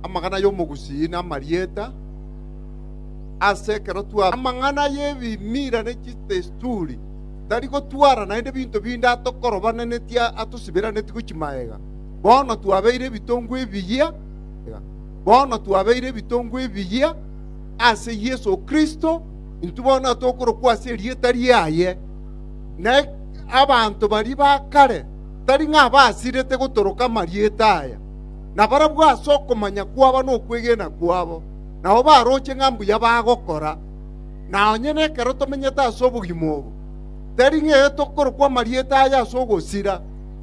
amang'ana y'omogusii na amarieta ase ekero twa amang'ana y'ebimira ne chitesturi tari gotwara naende binto binde atokorobanenetie atosiberaneti gochi maega bono twabeire ebitongo ebiyia bono twabeire ebitongo ebiyia ase Yesu Kristo intwe bono atokorokwa ase erieta riaye na abanto bari bakare tari ng'a abasirete gotoroka amarieta aya, na barabwo ase okomanya kwabo na okwegena kwabo nabo baroche ng'a mbuya bagokora. Na onye nekero tomenyete ase obogima obo, tari ng'a ere tokorokwa amarieta aya ase ogosira,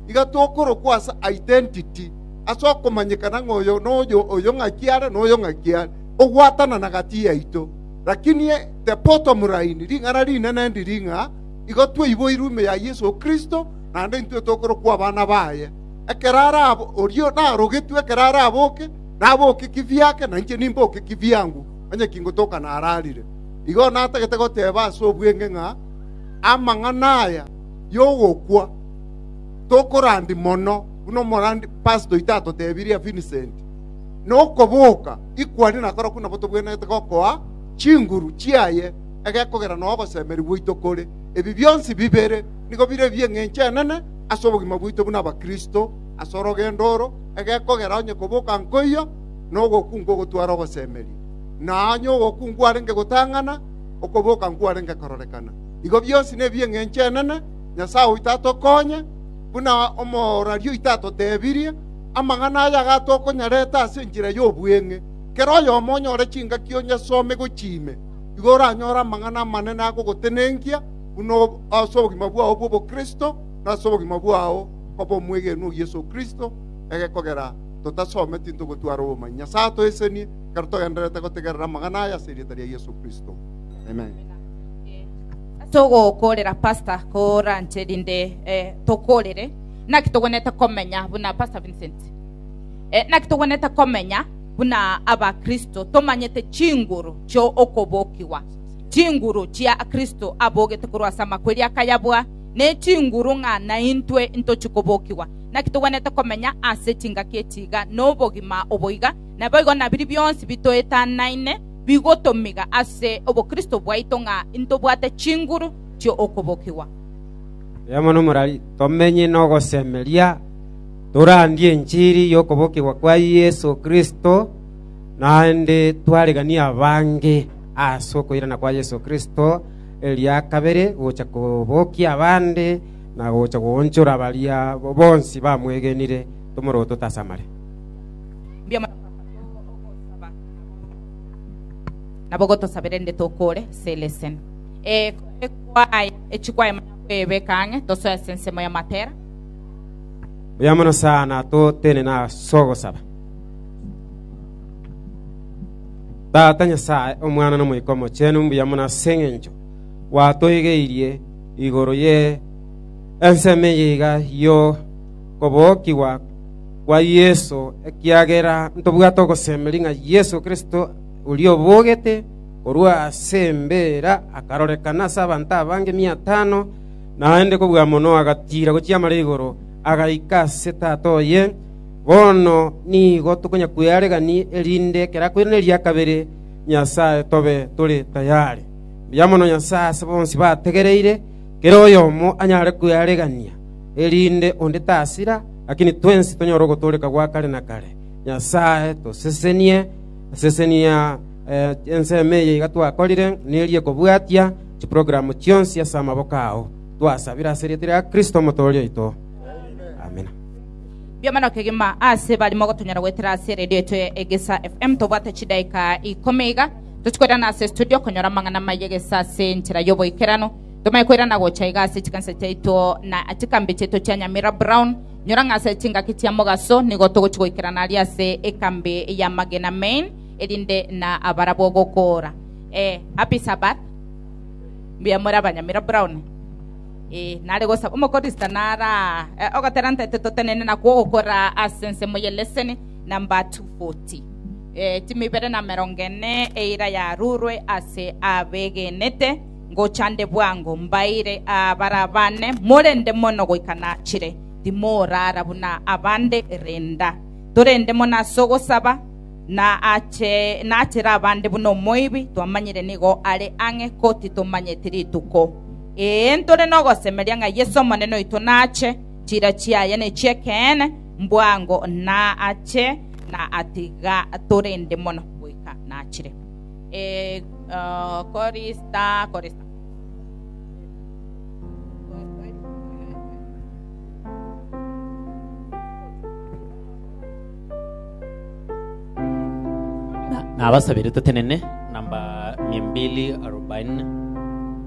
iga tokorokwa ase identity, ase okomanyekana ng'a oyo noyo, oyo ng'aki are, na oyo ng'aki are, ogwatanana gati yaito. Lakini the bottom line, ring'ana rinene ndiri ng'a igo twaiboirwe ime ya Yeso Kristo, naende intwe tokorokwa abana baye. Ekero arabe oria narogetwe, ekero araboke, naboke kibiake, na inche nimboke kibiangu, onye kingotoka nararire. Igo natagete goteeba ase obweng'e ng'a amang'ana aya y'ogokwa tokorandi mono, buna omorandi past oito atotebirie Vincent, na okoboka ikwani nakorokwo nabo tobwenerete gokoa chinguru chiaye egekogera nogosemberi gwaito kore. Ebi bionsi bibere nigo bire ebi'engencho enene ase obogima bwaito buna Abakristo ase orogendo oro egekogera onye koboka nkoiyo na ogokungu ogotware ogosemeria, na onye ogokungu arenge gotang'ana, okoboka nkwarenge kororekana. Igo bionsi nebi'engencho enene, Nyasae oito atokonye, buna omorwari oito atotebirie, amang'ana aya iga tokonyarete ase enchera y'obweng'e, kera oyomo onyore chingaki onyesome gochia ime, igo oranyore amang'ana amanene agogotenenkia, buna ase obogima bwao bw'obokristo, na ase obogima bwao koba omwegenwa o Yeso Kristo, egekogera totasome tintogotwara obomanyia. Nyasae atoesenie ekero togendererete gotegerera amang'ana aya ase erieta ria Yeso Kristo. Amen. togokorera pastor koranche rinde eh, tokorere naki togwenete komenya buna pastor vincent eh, naki togwenete komenya buna abakristo tomanyete chinguru chio okobokigwa chinguru chia Kristo abogete korwa ase amakweria akayabwa, ne chinguru ng'a naintwe intochie kobokigwa. Naki togwenerete komenya ase chingaki echi iga nobogima obo iga, naboigo nabiria bionsi bitoetanaine bigotomiga ase obokristo bwaito ng'a intobwate chinguru chi'okobokigwa. Erio mono morari tomenye nogosemeria, torandie enchiri y'okobokigwa kwa Yeso Kristo, naende twareganie abange. as'okoirana kwa Yeso Kristo eria kabere gocha kobokia abande, na gocha goonchora baria bonsi bamwegenire, tomoroote otasamare. Mbio amatuko atwo nabo gotosabera erinde tokore selesen. Ee, kore kwaya echikwaye mana kwebeka ang'e, tosoe ase ensemo y'amatera. Buya mono sana totenena as'ogosaba. Tata Nyasae, Omwana, na Omoika Omochenu, mbuya mono ase engencho gwatoigeirie igoro ye ensemo eye iga yo kobokigwa kwa Yeso, ekiagera ntobwate ogosemeria ng'a Yeso Kristo, oria obogete korwa ase embeera, akarorekana ase abanto abange miatano, naende kobua mono agatiira gochiamara igoro, agaika ase Tata oye, Bono nigo tokonya kwearegani, erinde ekero akoirana eria kabere Nyasae tobe tore tayare. Mbuya mono Nyasae ase bonsi bategereire, kera oyomo anyare kwearegania, erinde onde tasira, lakini twensi tonyore ogotooreka gwa kare na kare. Nyasae, tosesenie, sesenia eh, ensemo eye iga twakorire, nerie kobwatia chiprogram chionsi ase amaboko ao. Twasabire ase erieta ria Kristo omotooria oito. Amina. Biamana okegima ase bari mogotonyora goetera ase eredio yaito ya Egesa FM tobwate chidaika ikomi iga tochikoirana ase studio konyora amang'ana amaya egesa ase enchera y'oboikeranu tomanye koirana gocha iga ase chikanisa chiaito na chikambi chiaito chia Nyamira Brown nyora ng'a ase chingaki chia mogaso nigo togochi goikerana aria ase ekambi ya Magena Main erinde na abarabwo gokora eh, happy Sabbath mbuya more abanyamira Brown nare gosaba Omokristo naraae ogotera ntaito totenene na kogokora ase ensemo ye leseni namba 240, timi ibere na emerongo ene eira yarurwe ase abegenete, ngocha nde bwango mbaire abarabane morende mono goika nachire. Timorara buna abande renda. Torende mono ase ogosaba na ache nachire abande buna omoibi, twamanyire nigo are ang'e ko titomanyeti rituko. Ee, ntore nogosemeria ng'a Yeso Omonene oito nache, chiira chiaye nechiekeene, mbwango naache na atiga torende mono goika nachire. Ee, uh, korista, korista. na abasabire totenene namba 240